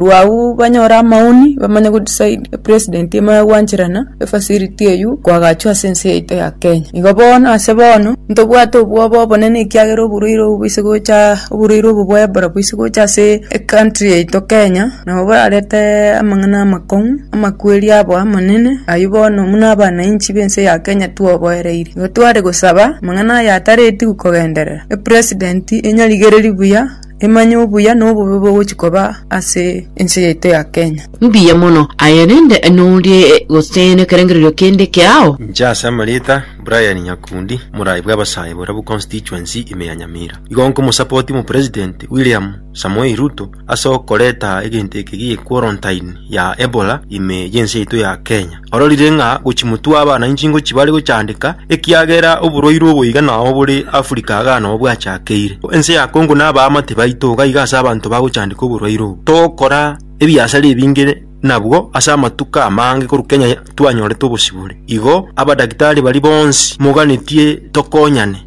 Barabwo agwo banyore amaoni, bamanye go decide e president emo ya gwancherana e facility eywo kwagachwa ase ense yaito ya Kenya. Igo bono ase bono, ntobwate obwoba obonene ekiagera oborwaire obo boise gocha oborwaire obo bwa Ebola boise gocha ase e country yaito Kenya, nabo borarete amang'ana amakong'u, amakweri abo amanene, ayio bono buna abanainchi b'ense ya Kenya twoboereire. Igo tware gosaba amang'ana aya ataretigwe kogenderera, e president enyarigereri buya, Emanye obuya na obobe bogochia koba ase ense yaito ya Kenya. Mbuya mono aye rende norie gose nekerengererio kende kiao. Inche ase amarieta Brian Nyakundi, morai bw'abasae Borabu Constituency ime ya Nyamira, igo nkomosapoti omopresident William Samoei Ruto ase okoreta egento eke gi'quarantaini ya Ebola ime y'ense yaito ya Kenya. ororire ng'a gochimotwa abana inche ingochia bare gochandeka, ekiagera oborwaire obo iga nao bore Africa iga nao bwachakeire. Ense ya Congo na abaamate baito iga iga ase abanto bagochandeka oborwaire obo. Togokora ebiasare ebinge nabwo ase amatuko amange korwa Kenya twanyorete obosibore. Igo abadaktari baria bonsi moganetie tokonyane.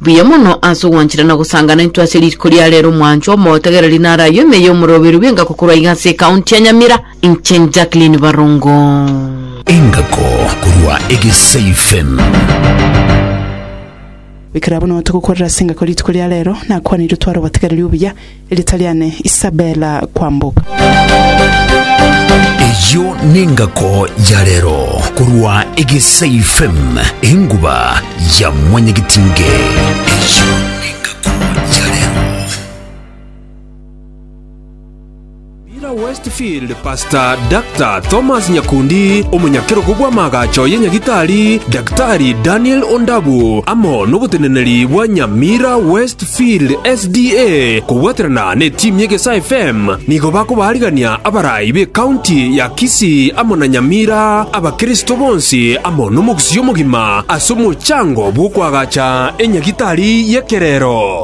Buya mono ase ogwanchera na gosangana intwe ase riko ria rero mwanchwa omotegereri naro ayio ime ya omoroberu bw'engako korwa iga ase ekaunti ya Nyamira inche Jacqueline Barongo. Engako korwa Egesei FM. Ekero abwo nao togokorera ase engako rituko ria rero, nakwanire otware obotegereri obuya, Riita riane Isabella Kwamboka. Eyio nengako ya rero korwa egesaifm enguba ya mwanyagitinge Eyio nengako ya rero. Ira Westfield, Pastor, Dr. Thomas Nyakundi, omonyakerogo bw'amaagacho ye Nyagitari, Daktari Daniel Ondabu, amo noboteneneri bwa Nyamira Westfield SDA kobwaterana netimu y'Egesae FM, nigo bakobaarigania abarai b'ecounty ya Kisii amo na Nyamira, abakristo bonsi amo nomogusii omogima ase omochango bw'okoagacha enyagitari y'ekerero.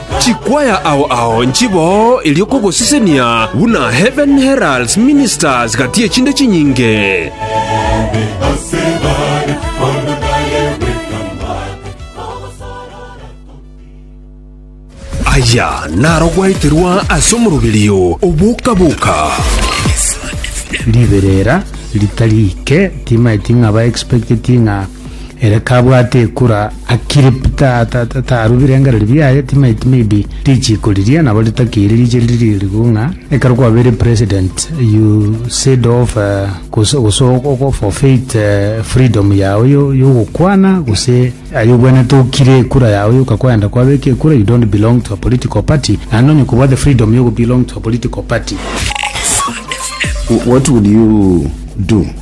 Chikwaya ao ao nchiboo erio kogosesenia buna heaven heralds ministers gati ye chinde chinyinge. Aya naro gwaeterwa ase omoroberio oboka-boka. riberera ritari ike timaeti ng'a ba expecteti ng'a Ere kabwate ekura Akiripu tarubire engareri biaye timaiti maybe richiko riria nabo ritakeire riche riria rigo ng'a ekero kwabere president you said of uh, gose ogoforfeit uh, freedom yao yogokwana gose ayo obwenete okire ekura yao yoka kwenda kwabeka ekura you don't belong to a political party naende onye kobwate freedom yogo belong to a political party what would you do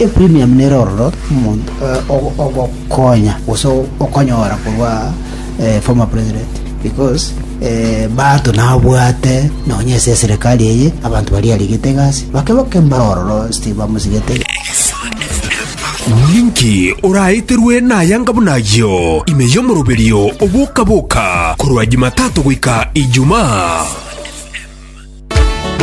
Eprimiamu nere ororo omonto ogokonya gose okonyora korwa former president because bato nabwate nonya ase eserekari eye abanto baria arigete egasi bake bake mbare ororo onsi tibamosigete Ninki oraeterwe nayanga buna ayio ime y'omoroberio oboka-boka korwa Jumatato goika Ijumaa?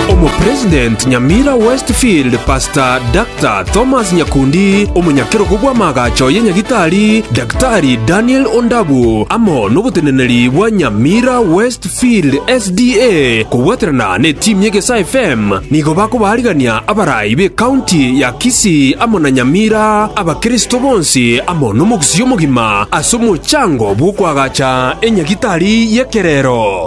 Omopresident Nyamira Westfield Pastor Dr. Thomas Nyakundi, omonyakerogo bw'amaagacho ye Nyagitari Daktari Daniel Ondabu, amo noboteneneri bwa Nyamira Westfield SDA kobwaterana ne team ye Gesaa FM nigo bakobaarigania abarai be county ya Kisii amo na Nyamira abakristo bonsi amo nomogusii omogima ase omochango bw'okoagacha enyagitari y'ekerero.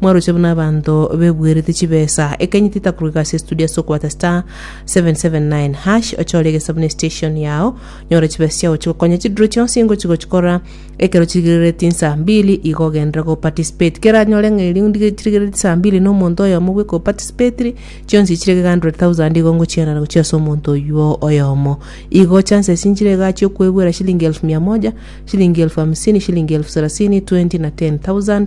Mwaroche buna abanto bebuerete chibesa, ekanyiti itakorwa egasi estudio ase okoata *779#, ochore egesa buna estation yao, nyora chibesa chiao chigokonya chidiro chionsi ingochi gochikora, ekero chirigereretie insa mbili igo ogenderere go participate. Kera anyore ng'a erio ndige- chirigereretie insa mbili na omonto oyomo bweka o participatire, chionsi chire gega 100,000 igo ngochianana gochia ase omonto oyuo oyomo. Igo chances nchire igaa chia okoebuera shilingi elfu mia moja, shilingi elfu hamsini, shilingi elfu sarasini, 20 na 10,000,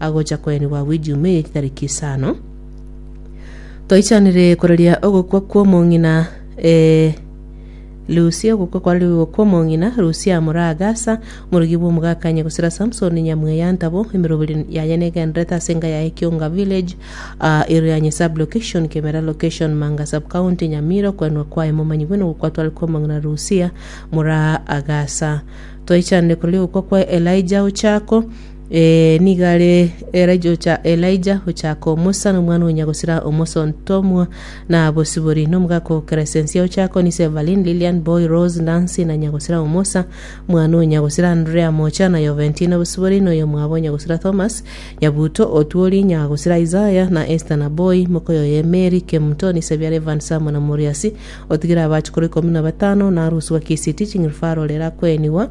agocha koenigwa gw'Ejiumaa eye chitariki isano, toichanire koraria ogokwa kw'omong'ina, ee, Lusia, ogokwa kwararia ogokwa kw'omong'ina, Lusia amura Agasa, omorogi bw'omogakanya, gosira Samsoni nyamweyantabu, emeroberi yaye negendererete ase enka yaye Kionga Village, aa, Irianyi Sub-location, Kemera Location, Manga Sub-county, Nyamira, Okoenwa kwaye momanyigwe n'ogokwa tware kw'omong'ina Lusia, mura Agasa. Toichanire koraria ogokwa kwa Elijah Ochako, Ee, nigo are Elija ocha, Elija ochaka omosa, nomwana o nyagosira omosontomwa, na bosibori, na omogaka o Kresensia ochaka onise Evelyn, Lilian, Boy, Rose, Nancy, na nyagosira omosa, mwana o nyagosira Andrea mocha, na Yoventi, na bosibori, na oyomwabo o nyagosira Thomas, Yabuto, Otuoli, nyagosira Isaya, na Esther, na Boy, mokoyo oye Mary, Kemto, onise biara Evans amo na Moriasi, otigire abachukuru ikomi na batano, na aroswa Kisiti, ching'irifaro rera kwenigwa,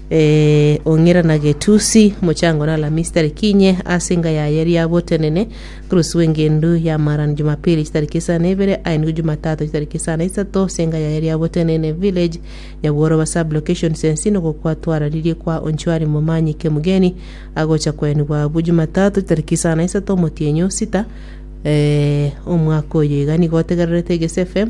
Ong'ira na Getusi, mochango na Alamisi tariki inye, ase enga yaye riabotenene, Kurusi w'engendu y'amaarani Jumapili chitariki isano na ibere, aye nigo Jumatatu chitariki isano na isato, ase enga yaye riabotenene, Village, Nyabworoba Sub-location Sensi, nigo kwatwararirie kwa Onchwari Momanyi Kemugeni agocha koenigwa abwo Jumatatu chitariki isano na isato omotienyi o sita, omwaka oyo. Iga nigo otegererete Egesu FM.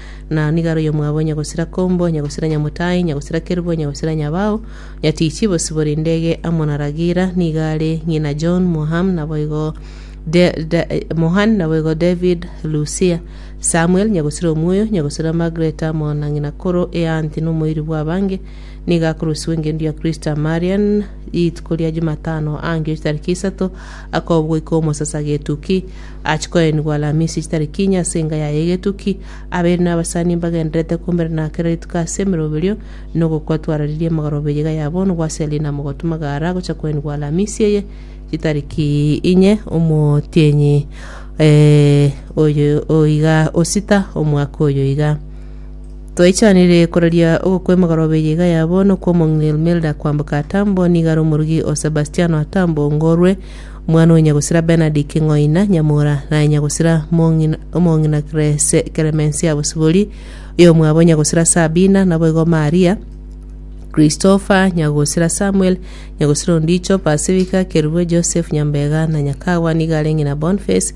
Na nigo aroiyo mwabo nyagosira kombo, nyagosira nyamotaai, nyagosira kerubo, nyagosira nyabao, nyatiichi bosibore indege amo na Ragira, nigo are ng'ina John, Moham, naboigo De- Da- Mohan, naboigo David, Lucia, Samuel, nyagosira omuoyo, nyagosira Margaret amo na ng'ina koro eaanti nomoiri bw'abange, nigo akorosiwa engendu ya Kristo Marian, rituko ria Jumatano angio chitariki isato, Akoobwa goika omosasa getuki, achie koenigwa Alamisi chitariki inye ase enga yaye egetuki, abeire nabasani mbagendererete kombere na kera rituko ase emeroberio, na ogokwa twararirie amagoro b'eyiga ya bono gw'ase Lina mogotwa magara gocha koenigwa Alamisi eye chitariki inye omotienyi oyo iga osita omwaka oyo iga. Twaichanire koraria ogokwemogara obe eyeiga yabo nokw'omong'ina Ilmelda kwamboka Atambo, nigo are omorugi o Sebastiano Atambo, ngorwe omwana o nyagosira Bernard King'oina, nyamura naye nyagosira mong'ina omong'ina Krese Clemencia Bosibori, oyomwabo nyagosira Sabina, naboigo Maria, Christopher, nyagosira Samuel, nyagosira ondicho Pasifika, Kerubwe, Joseph, Nyambega, na Nyakagwa nigo are ng'ina Bonface,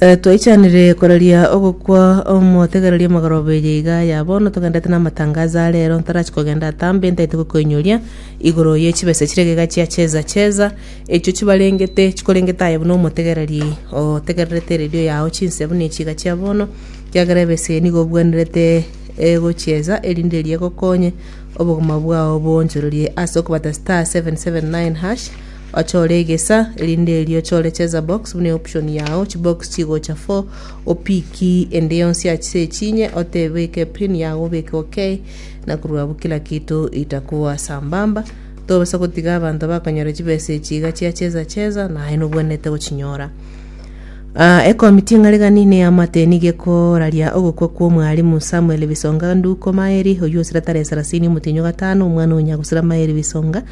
Eh, twaichanire koraria ogokwa omotegereria magoroba eye iga ya bono togendete namatangazo a rero ntarachi kogenda atambe ntaete gokoinyoria igoro ye chibesa chire gega chia cheza cheza echio chibarengete chikorengete aye buna omotegereri otegererete eredio yao chinse buna echi iga chia bono kiagera ebesa eye nigo obwenerete egochieza erinde eria egokonye obogima bwao bwonchorerie ase okobata star 779 hash Ochore egesa, erinde erio ochore cheza box buna eoption yao, chibox chigocha fo, opiki ende yonsi ase echinye, otebeke pin yago obeke ok, na korwa abwo kila kinto itakuwa sambamba. Tobasa gotiga abanto bakonyora chibesa echi iga chia cheza cheza, naye nobwenerete gochinyora. Ah, ekomiti ng'are gani neamate nigo ekoraria ogokwa kw'omwalimu Samuel Bisonga Nduko Maeri, oyio osira tarehe sarasini omotienyi o gatano, omwana o nyagusira Maeri Bisonga,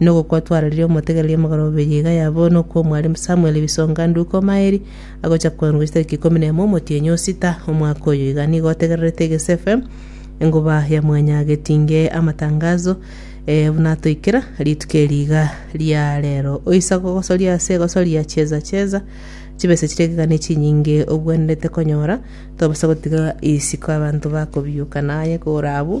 Nogokwa twarorire omotegereria omogaro obe riiga ya bono okw'omwarimu Samuel Bisonga Nduko Omaeri, agocha koanwa ase tariki ikomi na emo omotienyi o sita omwaka oyo. Iga nigo otegererete Egesu FM, enguba ya mwanya getinge amatangazo, ee, buna atoikera rituko eri iga ria rero. Oise gogosoria ase egosoria Cheza Cheza, chibesa chiria ekegani chinyinge obwenerete konyora, tobasa gotiga isiko abanto bakobiyoka naye kore abwo.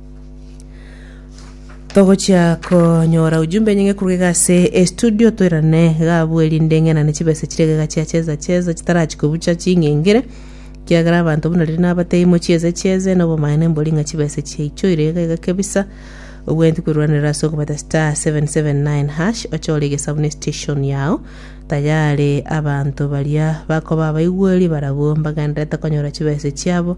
Togochia konyora ujumbe nyinge kuruga iga ase estudio toirane gabwo erinde ng'enane chibesa chire iga chia cheza cheza chitarachi kobucha ching'engere kiagera abanto buna riria nabatebia mochieze chieze na obomaene mbori ng'a chibesa chiaichoire iga iga kebisa obwenereti koirwanera ase okobeta star 779 hash ochore egesabu ne station yao tayari abanto baria bakoba abaigweri barabwo mbagenderete konyora chibesa chiabo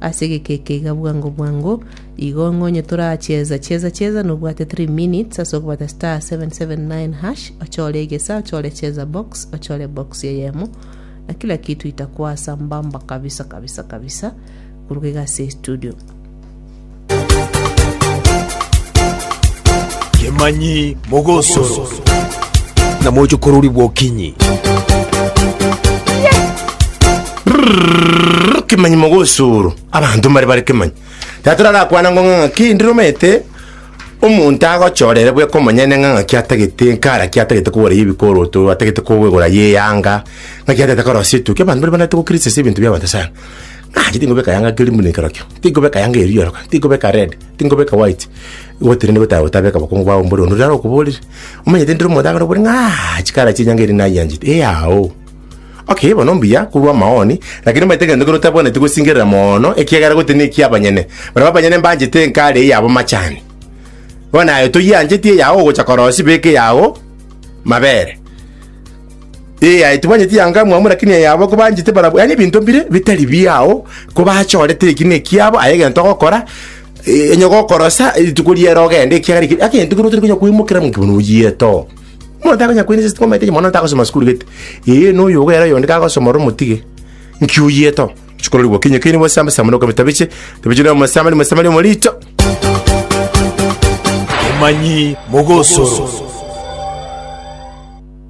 Ase egekeeke iga bwango bwango, igo ng'a onye torachieza chieza chieza nobwate 3 minutes ase okobata star 779 hash ochore egesa ochore cheza box ochore box eyemo na kila kitu itakuwa sambamba kabisa kabisa kabisa koruga iga ase estudio. Kemanyi mogosoro. Na moche korori bwokinyi. Brrrr, kemanyi mogosoro abanto mbare bare kemanyi tata rarakwana ngo ng'a ng'aki ndiromete omonto agochorere bweka omonyene ng'a ng'aki atagete nkara ki atagete kogora ye ebikoroto atagete kogora ye eyanga ng'aki atagete korosia etukia abanto mbare banete gokirisia ase ebinto biabanto sana Nache tinkoba ekayanga keria buna ekerokio, tinkoba ekayanga eria rioroka, tinkoba eka red, tinkoba eka white, gotenena gotaba gotaba eka bokongo bwabo mbore onde are okoborire. Omanyete ndire omonto akare okobore ng'a chikara chie enyanga eria nayianchete, eao. Okay, bono mbuya korwa amaoni, lakini omanyete egento kere otabwaneti gosingerera moono, ekiagera gotenena ekia abanyene, barabwo abanyene mbanchete enkari eyabo machani. Bono naye toyiancheti eyao ogocha korosia beka eyao mabere. Ee, aye tibanyeti yanga amwamu, lakini aye abo kobanchete barabwo, yaani ebinto mbire bitari biao, kobachorete ekina ekiabo, aye egento ogokora, eh, onye gokorosa rituko riere ogende, ekiagera eke- agento kere otari konya koimokera ng'a bono oyiete oo. Bono takonya koiresa esiko omanyete mwana takosoma sukuru gete. Ee, na oyo ogoera oyonde kagosoma ore omotige, nki oyiete oo? Chikorori gokinyi okinyi bosamba samba na okabita biche, tabiche na omosamba na omosamba na omorito. Omanyi mogosoro.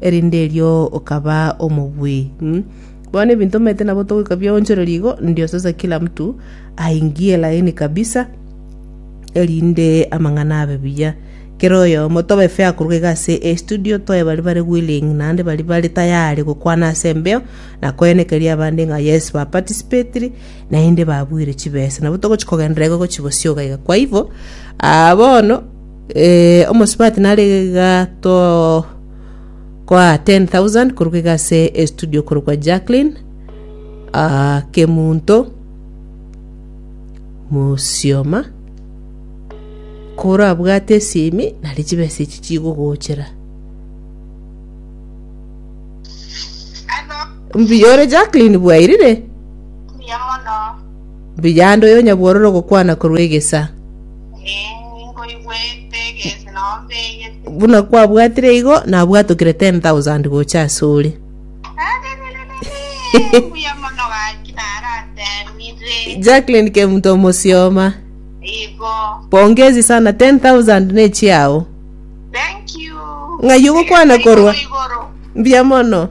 erinde erio okaba omobui. Mm. Bono ebinto omanyete nabo togoika biaonchoreria igo, ndio sasa kila mtu aingie laini kabisa, erinde amang'ana abe buya. Kera oyomo tobe fair koruga iga ase estudio, toe baria bare willing naende baria bare tayari gokwana ase embeo na koenekeria abande ng'a yes ba participated naende babuire chibesa. Nabo togochi kogenderera igo gochi gosioga iga. Kwa hivyo, ah, bono Ee, omosubati nare gatokoa 10000 korwa iga ase estudio korwa kwa Jacqueline ah, Kemunto Musioma korabwate esimi nari chibesa echi chigogochera Hello, mbuya ore Jacqueline bwairire mbuya mono. Mbuya ande oyo nyabwororo ogokwana korwa egesa. Buna kwabwatire igo, nabwatokire 10,000 gocha ase ore. Jacqueline Kemuto Omosioma. Pongezi sana 10,000 ne chiao. Ng'ai ogokwana korwa? Mbuya mono.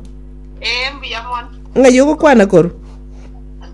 Ng'ai ogokwana korwa?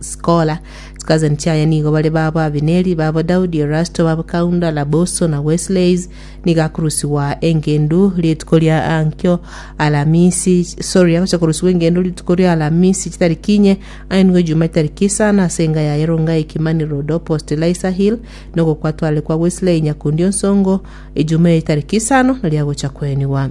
Skola. Chikazani chiaye nigo bare babo Abineri, babo Daudi, Erasto, babo Kaunda, Laboso, na Wesleys. Nigo akorusigwa engendu rituko ria ankio Alamisi, sorry, agocha korusigwa engendu rituko ria Alamisi chitariki inye, ainwe Ejuma chitariki isano ase enga yaye Rongai, Kimani Road, opposite Eliza Hill, na ogokwa atware kwa Wesley Nyakundi Onsongo, Ejuma eyo chitariki isano nario agocha koenigwa.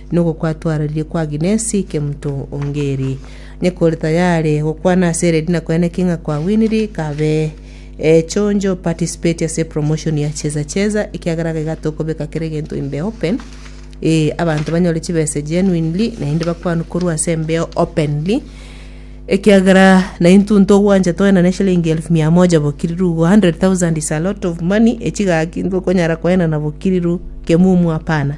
Nogokwatwararie kwa Agnes Kemto Ongeri, onye kore tayare gokwana ase eredi na kwene ki ng'a kwawiniri, kabe chonjo participate ase promotion ya Cheza Cheza ekiagera iga tokobeka kera egento in the open, ee abanto banyore chibesa genuinely naende bakwanwe korwa ase embeo openly ekiagera naintwe ntogwancha toenane eshilingi elfu mia moja bokiriru igo 100,000 is a lot of money echi gaki intwe okonyara koenana bokiriru kemumu apana.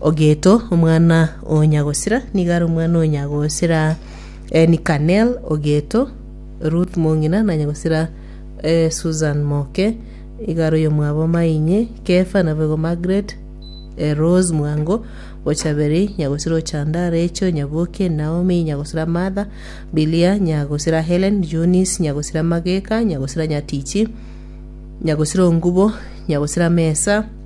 Ogeto, omwana o Nyagosira, nigo are omwana o Nyagosira eh, Nikanel Ogeto, Ruth mong'ina na Nyagosira eh, Susan Moke, igo are oyomwabo mainye Kefa na boigo Margaret eh, Rose Mwango, Ochaberi, Nyagosira Ochanda, Rachel Nyaboke, Naomi Nyagosira Martha, Bilia Nyagosira Helen, Jonis Nyagosira Mageka, Nyagosira Nyatichi, Nyagosira Ongubo, Nyagosira Mesa,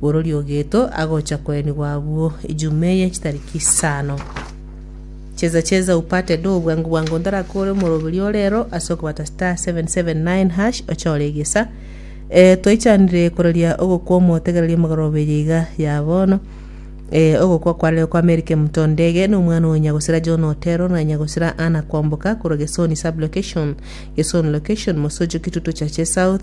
borori o geto agocha koenigwa agwo ejuma eye chitariki isano. Cheza cheza upate do bwango bwango ntaraka ore omoroberi orero ase okobata star 779 hash ochore egesa eh, twaichanire kororia ogokwa omotegereria omogoroba eye iga ya bono eh, ogokwa kwarire kwa Mary Kemuto Ndege na omwana onya gosira John Otero na nya gosira Anna Kwamboka korwa Gesoni sub location Gesoni location Mosocho Kitutu Chache South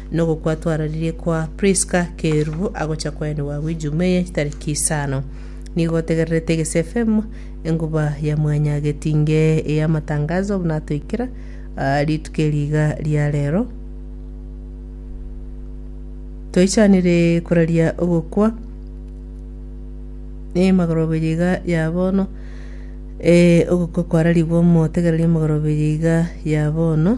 Nogokwatwararirie kwa Priska keru agocha kwaye nigo agwo ijuma eye chitariki isano. Nigo otegererete egeseefm enguba ya mwanya getinge ey'amatangazo buna atoikera aa rituko eri iga ria rero. Toichanire koraria ogokwa emagoroberia iga ya bono ee ogokwa kwararigwe omotegereri emagoroberia iga ya bono.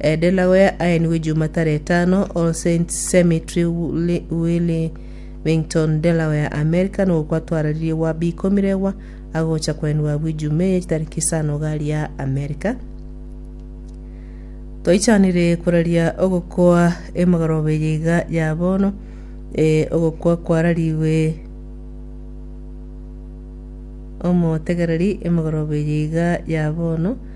Delaware, aenigwe Jumataro etano, All Saints Cemetery, Willi- Wilmington, Delaware, Amerika, nogokwatwararirie gwa bikomiregwa agocha koenigwa abwo Ijumaa eye chitariki isano iga ria Amerika. Toichanire koraria ogokwa emogoroba eye iga ya bono, eh, ogokwa kwararigwe omotegereri emogoroba eye iga ya bono,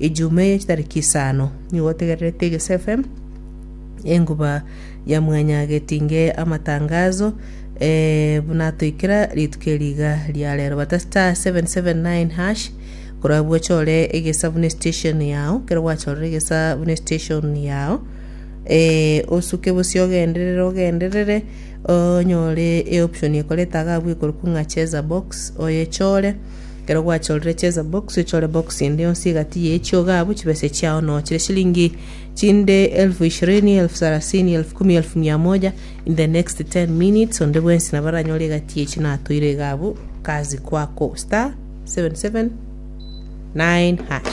Ejumaa eye chitariki isano nigo otegererete Egesu FM enguba ya mwanya getinge amatangazo eh, buna atoikera rituko eri iga ria rero bata star 779 hash korabwo ochore egesa buna station yao kero gwachorire egesa buna station yao eh, osuke bosio ogenderere ogenderere onyore eoption ekoreta agabwo ekoro kung'a cheza box oyechore Ekero gwachorire chesa box ochore box ende yonsi egati ye chiogabu chibese chiao no chire shilingi chinde elfu ishirini elfu sarasini elfu kumi elfu mia moja in the next 10 minutes onde bwensi nabaranyore egati echi natoire egabu kazi kwako star 77 9 hash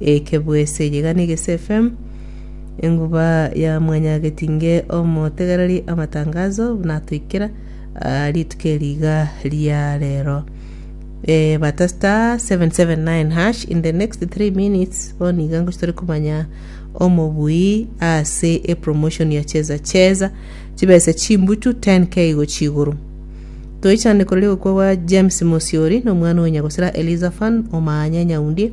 Eke bwese eye iga negese FM enguba ya mwanyagetinge omotegereri amatangazo buna toikera ah, rituko eri iga ria rero eh, bata star 779 hash in the next 3 minutes boni iga ngochi tore komanya omobui ase epromotion ya cheza cheza chibese chimbutu 10k gochi igoro toichane korori gokwa gwa james mosiori nomwana onya gosira eliza fan omanya nyaundie